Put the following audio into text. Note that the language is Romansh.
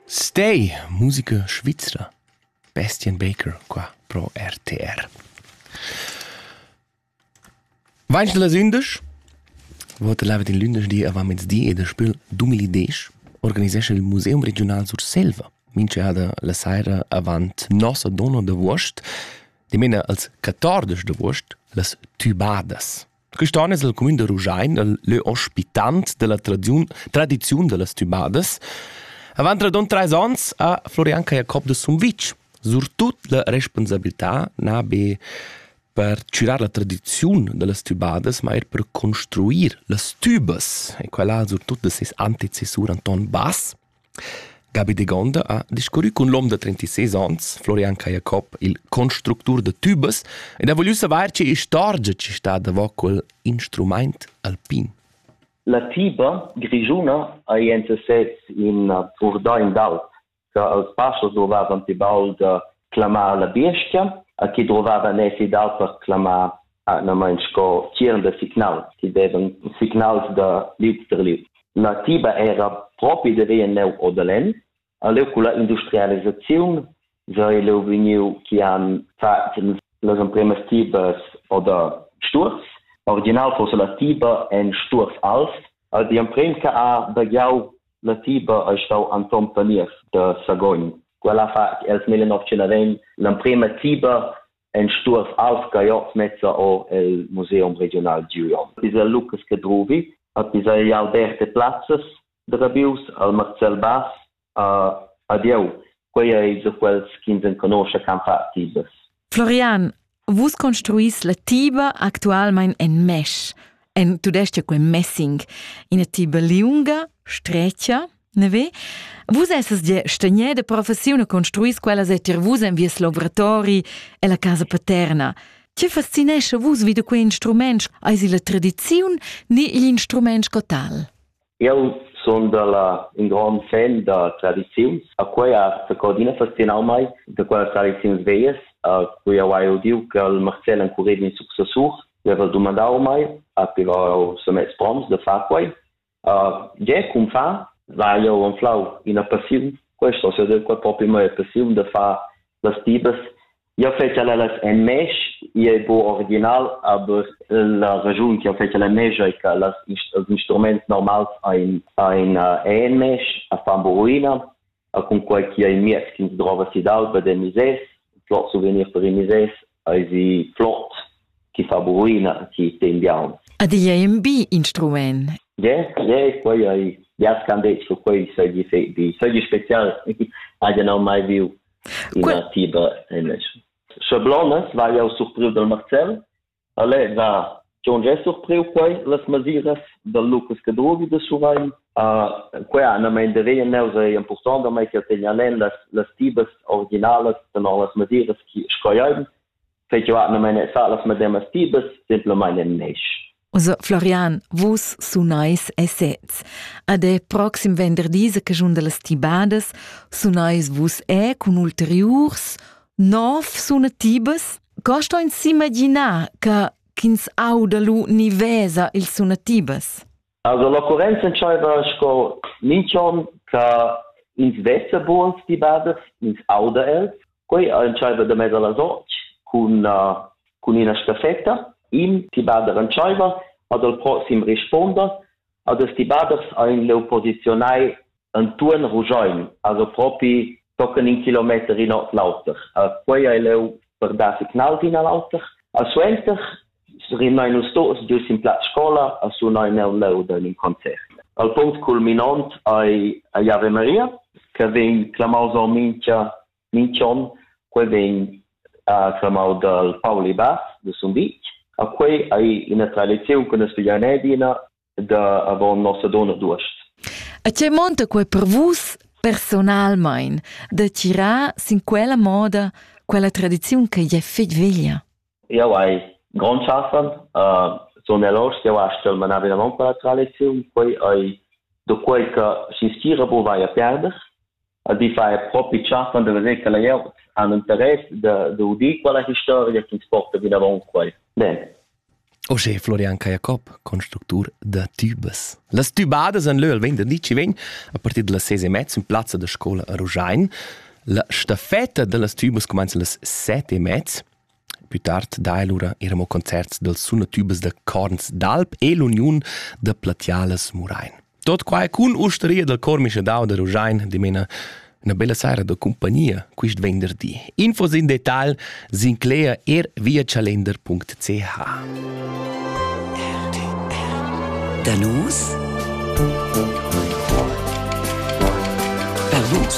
Stay, musica svizra. Bastian Baker qua pro RTR. Vainst las ündesch? Vota lava din lündeschdi avant mezdi e da spül 2010 organisescha il Museum Regional Surselva minchada la saira avant nossa donna d'avuost, dimena als 14 d'avuost, las Tubadas. Tristan es el cumün da Ruschein, il lö ospitant della tradiziun, tradiziun dellas tümadas. Avant radund trais ans ha Florian Jacob de Sumvitg surtut la responsabilità na be per chürar la tradiziun dellas tübadas, ma eir per construir las tübas. E quella surtut de ses antecessur Anton Bass. Gabi Degonda ha discurrü cun l'hom da trentisés ans, Florian Cajacob, il constructur da tübas, ed ha vogliü savair che istorgia chi sta davo quel instrumaint alpin. La tiba grischuna ha in sesez in purdain d'alp che als pachos drovavan pi baud clamar la biescha, a chi drovavan èsi d'alp per clamar atgnamain sco tgiern da signals che devan signals da liuts tar liuts. La tiba era propi da via neu o da lenn. A leu culla industrialisaziun sei leu vegniu che han fatg las empremas tibas oder sturs. Original fosse la tiba en sturs alv. Al di empren che ha bagiau la tiba ei stau Anton Paniers da Sagogn. Quella fa els 1920 l'emprema tiba en stuors alv gaiots mezza or el museum regional Gion. Isa Lucas che druvi, at isa jau derte plazzas de rabius al Marcel Bass a adieu. Quei ei de quels ch'ins enconosce can fa tibas. Florian, vus construis la tiba actualmein en mesh, en tudestg quei messing, ina tiba liunga, strecia? Ne ve? Vus essas gia stegné de professiun e construis quellas e tier vus en vies lavoratori e la casa paterna. Tge fascinescha vus vid quei instrument? Eis il la tradiziun ni igl instrument sco tal? Eu sun dalla un grand fan da tradiziuns. A quei as codina fascinau mai, da quelle tradiziuns veies, a cui eu hai udiu che il Marcel encureva in successur, eu haveva domandau mai, a piva eu se mets proms de far quei. Gie, cumfà, sai jau anflau ina passiun. Questo se del qua propi mo è passiun da far las tibas. Io fece la las en mesh, io è bo original, aber la ragiun che io fece la mesh è che las, ils instruments normals ein ein en mesh, a fan bo ruina. a cunquai chi ha in miez chi'ns drova si d'alba dè misers, flot souvenir per i misers ais flot chi fa buruina chi ten biauns. Ad illa è ün bi instrumaint. Ie, ie, quai ai, ja s'can det che quai sagli fai di, sagli spezial, hajan ho mai viu ina tiba en Sche Blondas war ja surpriv del Marcel Ale, na, Jon giè surpriu quai las masiras dal Lucas Cadruvi da Surrein. Uh, quai ha annamaint da rein neus è important da mai che tegna nen las las tibas originalas tenor las masiras chi scoiain. Fai che ha annamaint sa las mademas tibas simplamain in nesh. Also, Florian, vus sunais esets. Ad è proxim venderdi, se che giun de las tibadas, sunais vus è cun ulteriurs Nov sunatibas? Co sto ins s'imaginar che ch'ins auda lu ni vesa ils sunatibas? Also l'occurrenza entscheiva sco minch'on che ins vesa buns dibadas, ins auda els. Quei entscheiva da mez alla notg cun, uh, cun ina staffetta. In dibada entscheiva ad el proxim risponder. Ad els dibadas ein leu posizionai Antuon Ruschein haja propi tochen in kilometer in ord l'auter. Quei ei leu per dar signals in al auter. A suenter rimnai nus tots dus in plaz scola a sunar nel leu da in concert. Al punct culminant ei ei Ave Maria, che vegn clamaus en mincha mincha on, quei vegn uh, clamau dal Pauli Bass de Sumvitg. A quei ei ina tradiziun che nus figein adina da avon Nossadona d'uost. A tgei monta quei per vus personalmein da tirar sin quella moda quella tradiziun che jei fetg veglia? Jau hai grond schaffen, uh, sun elors jau astgel manar vinavant quella tradiziun, quei ei do quei che schi schira bu vai a perder, Ordeifer propi tschaffen da veser quella glieud han interess da, da udir quella historia ch'ins porta vinavon quei. Bene. Oje Florian Cajacob, constructur da tubes. Las tubadas en leu al venderdi ci vegn a partir dalla sese e mezza in plazza da scola a Ruschein. La staffetta dallas tubes cumenza las sette e mezza. Pü tard daja lura eir amo concerts dals sunatübas da Corns d'Alp e l'Uniun da Platialas Murain. Tot quai cun ustaria dal Chor Mischadau da Ruschein dimena üna bella saira da cumpagnia quist venderdi. Infos in detal s'inclegia er via chalender.ch. Da nus per vus.